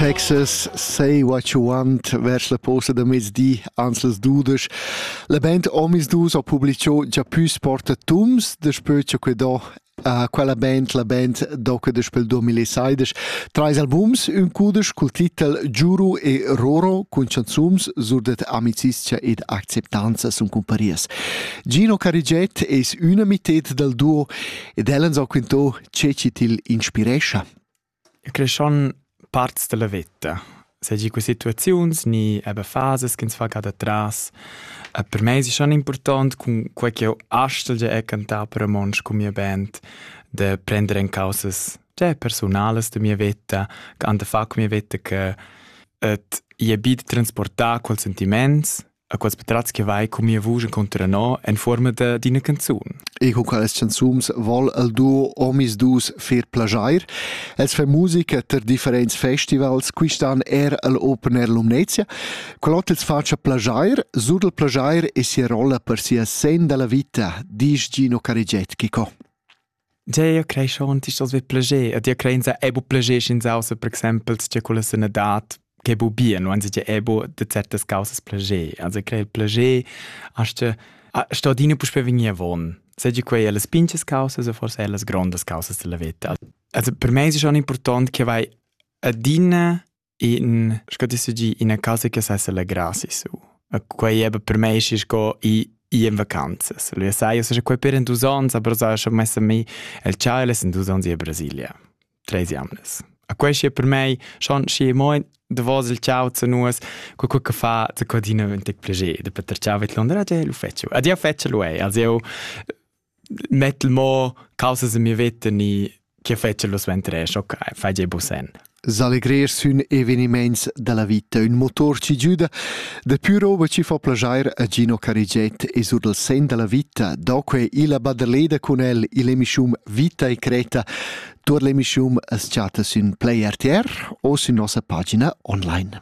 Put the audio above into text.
Texas Say What You Want vers la posta da mezdi ans las dudesch. La band Omisdus ha publiciu già püs portatums daspö cha que do Uh, quella band, la band doca del 2016, trais albums, un cudesch col titel Giuru e Roro cun chanzums surdet amicizia ed acceptanza sun cumparias. Gino Cariget es üna mited dal duo ed ell'an so quintò che ci til inspirescha. I creschan parts da la veta, seigi que situaziuns ni eber fasas ch'ins fa cada tras. Per mei es schon important cun quei ch'jeu astgel er cantar per romontsch cun mia band, de prender en causas già personalas da mia veta, che han da far cun mia veta che et ia bid transportar quels sentiments A quels patratgs che vai cun mia vusch encunter no en forma da d'ina canzun. Ego quelles canzums vol el duo omis dus fer plagiair. Els fa musica ter differents festivals, quistan er el Open Air Lumnezia. Quell'ot els faccia plagiair, sur del plagiair e sia rolla per sia sen della vita, disch Gino Cariget Chico. Dir crei schon ist das wie Pläger. Dir crein sa ebo Pläger in sausa, per exempel, tge quella sanadad che bu bien, wenn sie ebo de certas causas Pläger. Also crei il Pläger, hast sto dino puspe vegnir von. Seigi quei las pinches causas o forse las grandes causas della vita. Also per me è schon importante che vai adina in sco ti sugi ina casa che sa selegra si su quei è per me schi sco i i in vacanzas lui sai io so quei per in dus ans aber sa schon messa mi el Charles in dus ans in Brasilia tre jamles a quei schi per me schon schi mo de vos il ciao zu nus co co che fa zu codina un tec plege de Peter Ciao et Londra je lu fetchu adia fetchu lui also Mettel mo causa se mi vetta ni chi fetscha lo suenter escho, fai jeu busen. S'allegrer sün evenimaints da la vita ün motor ci giüda dapü roba chi fa plajair a Gino Carigiet e sur dal sen da la vita. Doque illa baderleda cun el ill'emischum Vita e Creta. Tuot l'emischum as chatta sün Play RTR o sün nossa pagina online.